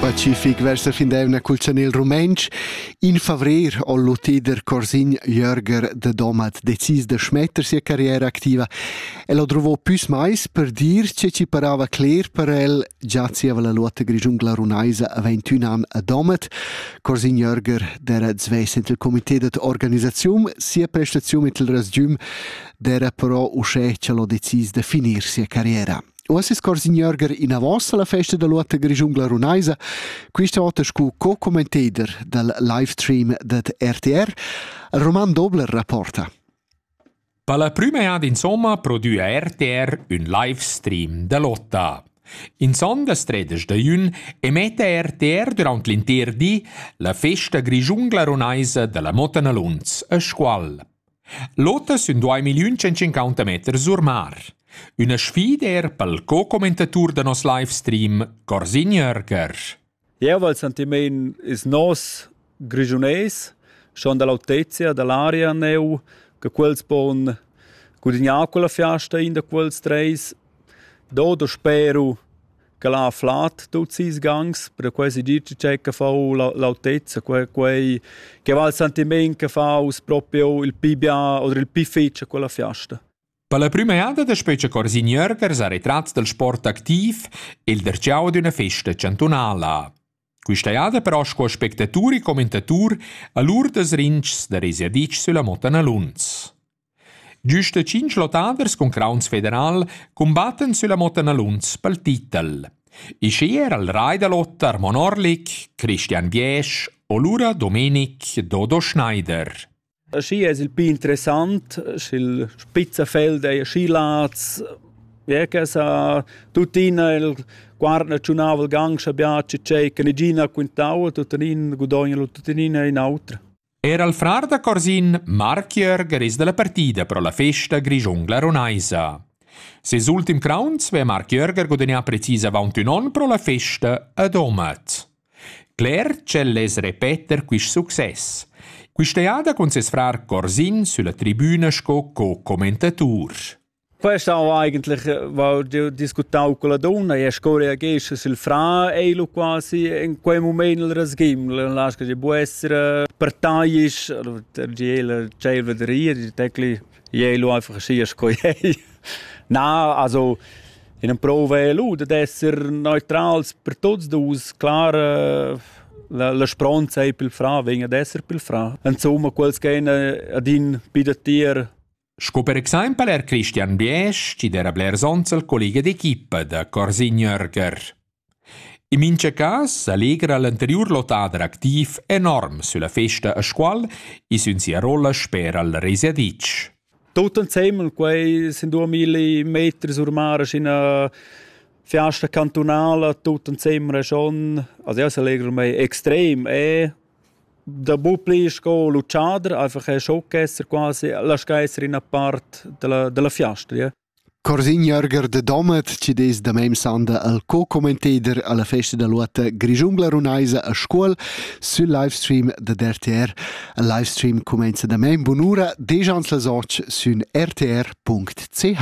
Pacific versa fin d'eivna cul chanel rumentsch. In favrer ho l'utider Corsin Jörger de Domat decis da schmetter sia carriera activa. El ho druvò püs mais per dir che ci parava cler per el, già zieva la luota grischungla runaisa a 21 an a Domat. Corsin Jörger d'era svess int il comité dat organisazium, sia prestaziun mit il rasgium d'era però uschè ch'el ho decis da finir sia carriera. Uossa scorsignörger inavos alla festa da lotta grischun glarunaisa, quista ota scu co-commentator dal livestream dad RTR, Roman Dobler rapporta. Per la prüma ad insomma prodüa RTR ün livestream da lotta. In sondas tredes da jün emetta RTR durant l'inter di la festa grischun glarunaisa dalla Motta Nalunz a Scual. L'oter sün duai milliun tschentschincauta meter sur mar. Üna sfida eir pel co-commentatur da nos livestream, Corsin Jörger. Jeu val sentimein ils nos grischunais schon dall'autezia dall'aria neu che quels pon gudignar quella fiasta in da quels treis. Do do spero ch'el ha flat tuts ils gangs, perquei si dir tgei che fa la l'autezza, quei quei che va il sentiment che fa us proprio il pi bien oder il pi fetg a quella fiasta. Per la prima eada da Specie Corsin Jürgers ha retratts dal sport activ il derciau d'üna festa chantunala. Questa eada però sco spectatur e commentatur a lur das rinchs da resiadic sulla Mota Naluns. Güsta tschinch lottaders cun crauns federal cumbattan sülla motta Naluns pel titel. I schi era il rai da lot Armon Orlik, Christian Biesch o lura Domenic Dodo Schneider. Schi es il pì interessant, sch'il spizzafel d'eir schi lats, ja che sa tuttina il quarna tschunava il gang scha biaci tschei che nigina quintava, tuttenin gudogna tuttenina in autra. Era il frar da Corsin, Marc Jörger, es da la partida pro la festa grischungla runaisa. Ses ultim crauns vea Marc Jörger gudagnà precis avaunt ün on pro la festa a Domat. Cler ch'el less repeter quist success. Quista jada cun ses frar Corsin sülla tribüna sco co-commentatur. Questa ho eigentlich val discutau con la donna e sco reagesce sil fra ei lu quasi in quei mument il rasgiml lasca di bu essere partaisch der tschelva der rir di tecli ei lu einfach schi sco ei na also in prova è lu da esser neutrals per tots dus klar la la spronza ei pil fra vegn ad esser pil fra insomma quels che ein ad in bi da tier Sco per exempel er Christian Biesch, chi d'era blers ons al collega d'equipa da Corsin Jörger. In mincha cas allegra l'anteriur lotader activ enorm sülla festa a Scuol e sün sia rolla sper al Resiadic. Tutto insieme, quei sind 2000 Meter sur mare in una fiasta cantonale, tutto insieme schon, also io allegra me extrem e Dapupi sco l'utschader einfach è schon ch'esser quasi laschà esser ina part dalla dalla fiasta, ja. Corsin Jörger de Domat, chi dess da mem sanda al co-commentader alla festa da luota grischungla runaisa a Scuol sül livestream da RTR. Il livestream cumenza da mem bunura desch ans las och sün rtr.ch.